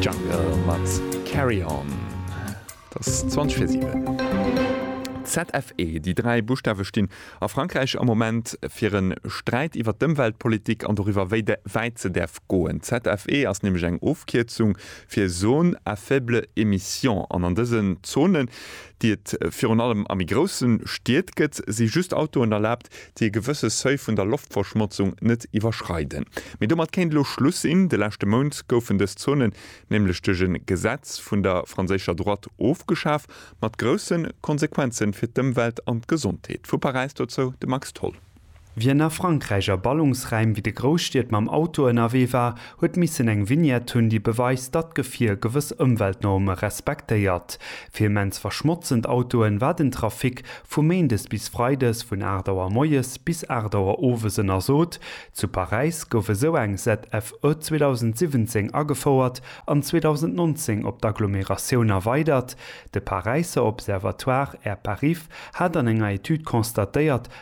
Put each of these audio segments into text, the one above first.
Jungle mat Carry On. Et ass 20 fir 7. ZFE, Déi dräi Buschtawe stinn a Frankräich am Moment fir e Sträit iwwer d'Ëmweltpolitik an doriwwer, wéi wäit se däerf goen. ZFE ass nämlech eng Ofkierzung fir Zones à faible émission. An an dësen Zonen, déi et virun allem a méi grousse Stied gëtt, si just Autoen erlaabt, Wert, déi e gewësse Seuil vun der Loftverschmotzung net iwwerschreiden. Mee domat kéint elo Schluss sinn. De leschte Mount goufen dës Zonen nämlech duerch e Gesetz vun der franséischer Droite ofgeschaf, mat grousse Konsequenze fir d'Ëmwelt an d'Gesondheet. Vu Paräis dozou de Max Tholl. Wien a Frankräich a Ballungsraim wéi de Grousstied mam Auto ënnerwee war, huet missen eng Vignette hunn, déi beweist, datt d'Gefier gewëss Ëmweltnorme respektéiert. Fir immens verschmotzend Autoen war den Trafic vu méindes bis freides vun 8 Auer moies bis 8 Auer owes ënnersot. Zu Paräis gouf esou eng ZFE 2017 agefouert an 2019 op d'Agglomeratioun erweidert. De Paräisser Observatoire Air Parif hat an enger Etüd constatéiert,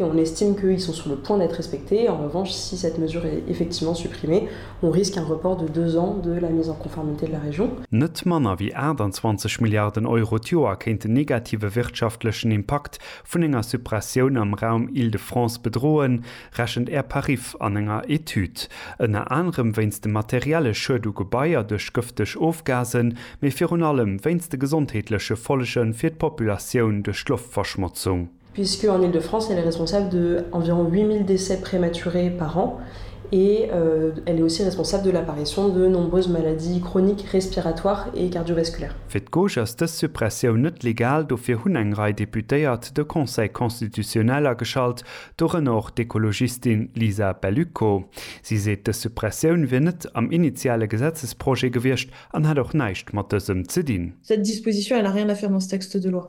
Et on estime qu'ils sont sur le point d'être respectés. En revanche, si cette mesure est effectivement supprimée, on risque un report de deux ans de la mise en conformité de la région. Net manner wéi 28 Milliarden Euro d'Joer kéint den negative wirtschaftlechen Impakt vun enger Suppressioun am Raum Île-de-France bedroen, rechent Air-Parif an enger Etüd. Ënner anerem wéinst dem materielle Schued u Gebaier duerch gëfteg Ofgasen, mee virun allem wéinst de gesondheetleche Follege fir d'Populatioun duerch d'Loftverschmotzung. puisque en Île-de-France elle est responsable de environ 8.000 décès prématurés par an et elle est aussi responsable de l'apparition de nombreuses maladies chroniques respiratoires et cardiovasculaires. Fir d'Gauche ass dës Suppressioun net legal, dofir hunn eng Rei Deputéiert de Conseil constitutionnel ageschalt, dorënner och d'Ekologistin Lisa Bellico. Si seet, dës Suppressioun wier net am initiale Gesetzesprojet gewiescht an hätt och näischt mat dësem ze dinn. Cette disposition, elle n'a rien à faire dans ce texte de loi.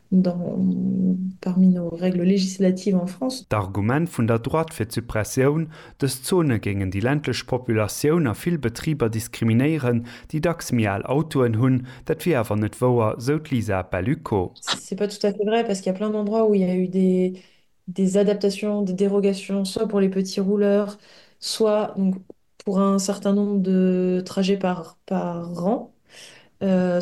parmi nos règles législatives en France. D'Argument vun der Droite fir d'Suppressioun, dës Zone géingen déi ländlech Populatioun a vill Betriber diskriminéieren, déi dacks méi al Autoen hunn, dat wier awer net wouer, sou d'Lisa Ballucco. C'est pas tout à fait vrai, parce qu'il y a plein d'endroits où il y a eu des adaptations, des dérogations, soit pour les petits rouleurs, soit donc pour un certain nombre de trajets par par an,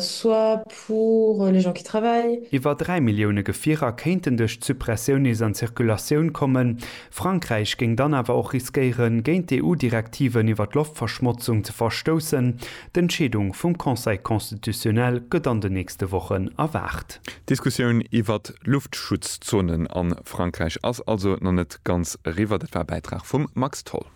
soit pour les gens qui travaillent. Iwwer 3 Millioune Gefierer kéinten duerch d'Suppressioun nees an d'Circulatioun kommen. Frankräich géing dann awer och riskéieren, géint d'EU-Direktiven iwwer d'Loftverschmotzung ze verstoussen. D'Entscheedung vum Conseil constitutionnel gëtt an den nächste Wochen erwaart. D'Diskussioun iwwer Luftschutzzonen a Frankräich ass also nach net ganz eriwwer. Dat war e Bäitrag vum Max Tholl.